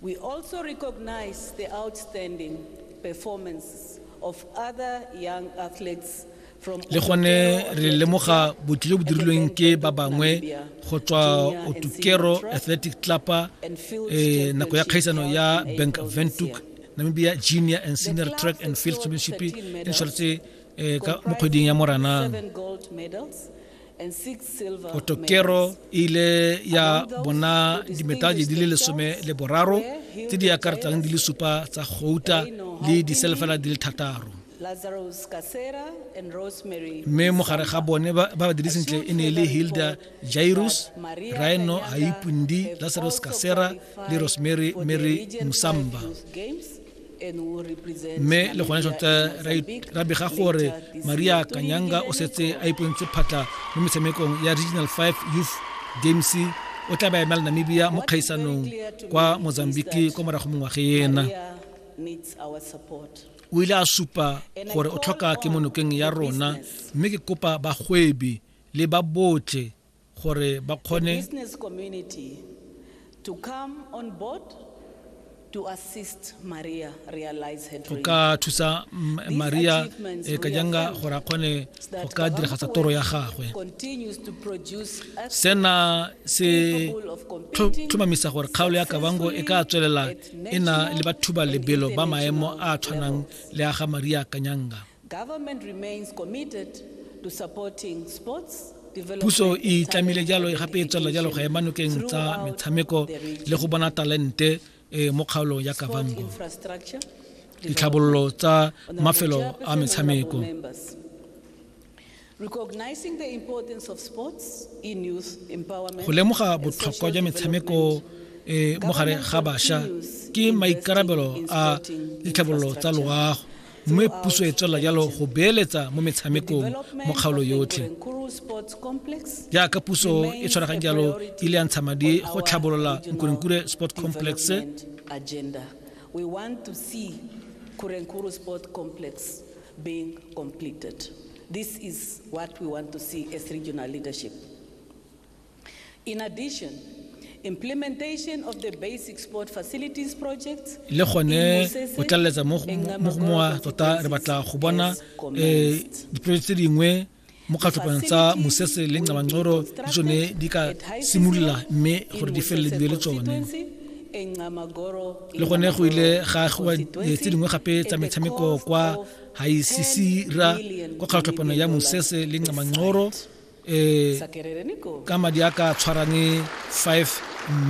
We also recognize the outstanding performance of other young athletes le gone re lemoga botli jo bo dirilweng ke ba bangwe go tswa otukero athletic clubpa eh, nako ya kgaisano ya bank ventuk namibia junior and senior track and field championship e ntshwaretse eh, mo kgweding ya moranang otokero e ile ya bona dimetale di le lesome le boraro tse di akaretsang di le supa tsa gouta le diselefela di le thataro mme mogare ga bone ba ba dire sentle e ne e le hilda jairus rhino haipundi lazarus kasera le rosemary mary musamba mme le gone tota ra bega gore maria kanyanga o setse a ipontse phatla mo metshamekong ya regional 5 youth games o tla ba emela namibia mo kgaisanong kwa mozambique kwa morago mongwage ena o ile a supa gore o tlhoka ke monokeng ya rona mme ke kopa bagwebi le ba botlhe gore ba kgone business community to come on board to assist Maria realize her dream. ka thusa Maria e eh, ka janga gore a kgone go ka diragatsa toro ya gagwe sena se tlhomamisa gore kgaolo ya kabango e ka tswelela e na le bathuba lebelo ba maemo a tshwanang le a ga Maria Kanyanga Puso e itlamile jalo gape e tswelela jalo go ema nokeng tsa metshameko le go bona talente eh, mo kgaolong ya Kavango. Ditlhabololo tsa mafelo a metshameko Go lemoga botlhokwa jwa metshameko e mo gare ga bašwa ke maikarabelo a ditlhabololo tsa loago mme puso e tswelela jalo go beeletsa mo metshamekong mo kgaolo yotlhe jaaka puso e tshwaraganye jalo e ile ya ntsha madi go tlhabolola nkurenkure sport complex We want to see Kurenkuru Sport Complex being completed. This is what we want to see as regional leadership. In addition, implementation of the basic sport facilities projects le gone o tlaleletsa mo go mowa tota re batla go bona um diprojeke tse dingwe mo kgatlhopong tsa mosese le ncabancoro le tsone di ka simolola mme gore di felele dibe le tsone le gone go ile ga agiwa eh, tse dingwe gape tsa metshameko kwa haisisira kwa kgatlhopano ya mosese le ncamanqoro eh ka madi a ka tshwarane 5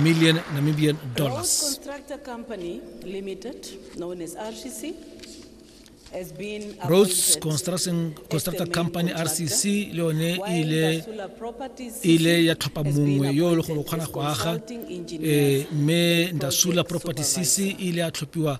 million namibian dollars constructor company limited known as rcc Roads Construction Constructor Company RCC le yone e ile e ile ya tlhopha mongwe yo le gore o kgona go aga eh, mme Ndasula Property CC e ile ya tlhophiwa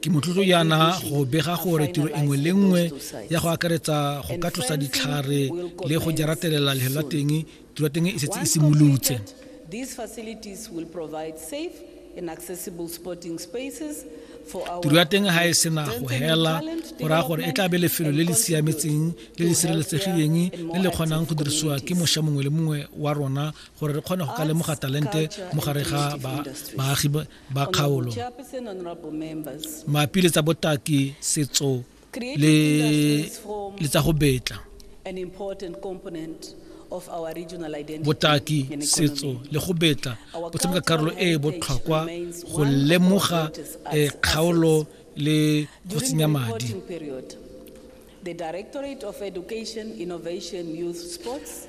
ke motlotlo jaana go bega gore tiro engwe le nngwe ya go akaretsa go ka tlosa ditlhare le go jaratelela lehelo la teng tiro ya teng e setse e simolotse tiro ya teng ga e sena go hela go raya gore e tla be lefelo le le siametseng le le sireletsegileng le le kgonang go dirisiwa ke mošwa mongwe le mongwe wa rona gore re kgone go ka lemoga talente mo gare ga baagi ba kgaolo mapi le tsa botaki setso le le tsa go betla botaki setso le go betla bo tshameka karolo e e botlhokwa go lemoga eh, kgaolo le go tsenya madi The Directorate of Education, Innovation, Youth Sports